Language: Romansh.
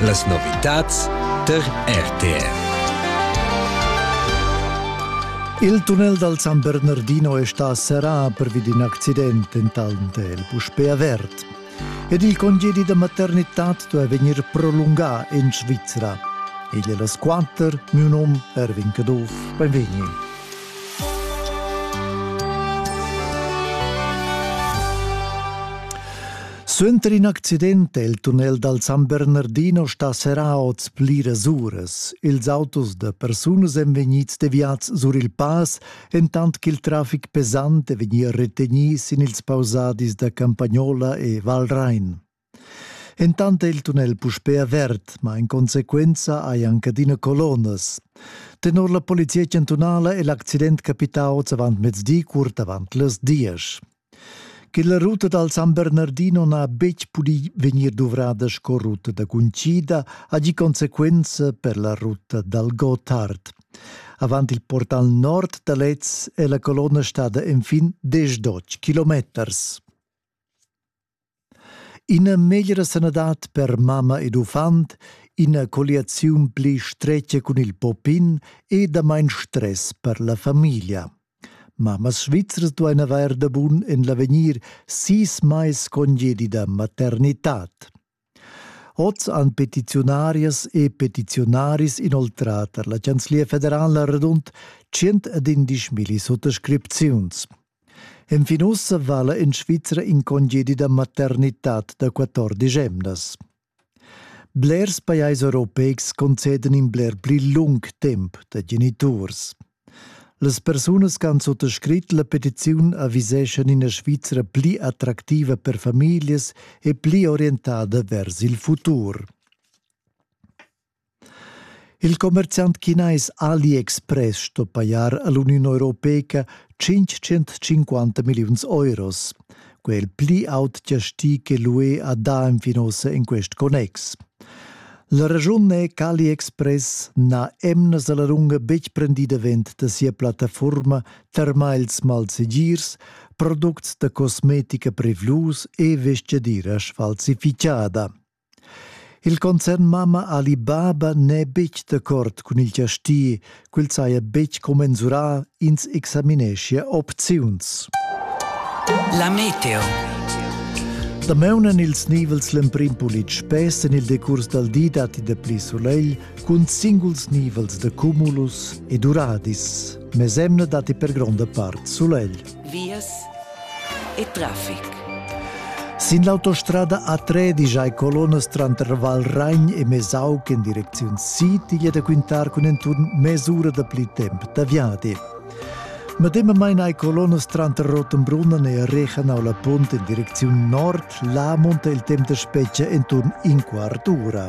Las novitads tar RTR. Il tunnel dal San Bernardino è stà serrà pervi d'in accident entant è el puspè avert. Ed il congedi da maternità duai vegnir prolungà en Svizra. Igl è las quatter, mio num Erwin Caduff. Benvegni. Suenter in accident è il tunnel dal San Bernardino stà serrà oz pliras uras. Ils autos da persunas èn vegnids deviads sur il pass, entant ch'il traffic pesant è vegnì retegnì sin ils pausadis da Campagnola e Valrain. Entant è il tunnel puspè avert, ma in consequenza hai anc adina colonas. Tenor la polizia chantunala è l'accident capità oz avant mezdi, curt avant las diesch. Che la ruta dal San Bernardino n'ha betg pudì vegnir duvrada sco ruta da cuncida ha gì consequenza per la ruta dal Gotthard. Avant il portal nord da lez è la colonna stada enfin diesch kilometers. Ina meglra sanadad per mamma ed uffant, ina colliaziun pli stretga cun il poppin e damain stress per la famiglia. Mammas svizras duain avair da bun en l'avegnir sis mais congedi da maternitad. Hoz han petiziunarias e petiziunaris inoltrà tar la Chanzlia federala radund 111.000 suttascripziuns. Enfin ussa vala in Svizra in congedi da maternitad da 14 emnas. Blers pajais europeics conceden in bler pli lung temp da geniturs. Las persunas che han suttascrit la petiziun aviseschan ina Svizra pli attractiva per famiglias e pli orientada vers il futur. Il commerziant chinais AliExpress sto pajar all'Uniun Europeica 550 milliuns euros. quel pli aut chasti che l'UE ha dà fin ossa in quest connex. La ragiun è qu'AliExpress n'ha emnas alla lunga betg prendì davent da sia plattaforma termals malsegirs, products da cosmetica prevlus e vestgadira sfalsifichada. Il concern mamma Ali Baba n'è betg d'accord cun il chasti, quel saja betg commensurà, ins examineschia opziuns. La meteo. Damaun en ils nivels l'emprim pulit spess en il decurs dal di datti dapli sulegl cun singuls nivels da cumulus e duradis. Mesemna datti per gronda part sulegl. vias e traffic. Sin l'autostrada A3 digiai colonas tranter Valragn e Mesauc en direcziun Sitiglia da quintar cun enturn mesura da pli temp da viadi. Medemamain hai colonas tranter Rottenbrunnen e Rechenau la Punt en direcziun nord, là monta il temp da spetga enturn in quart ura.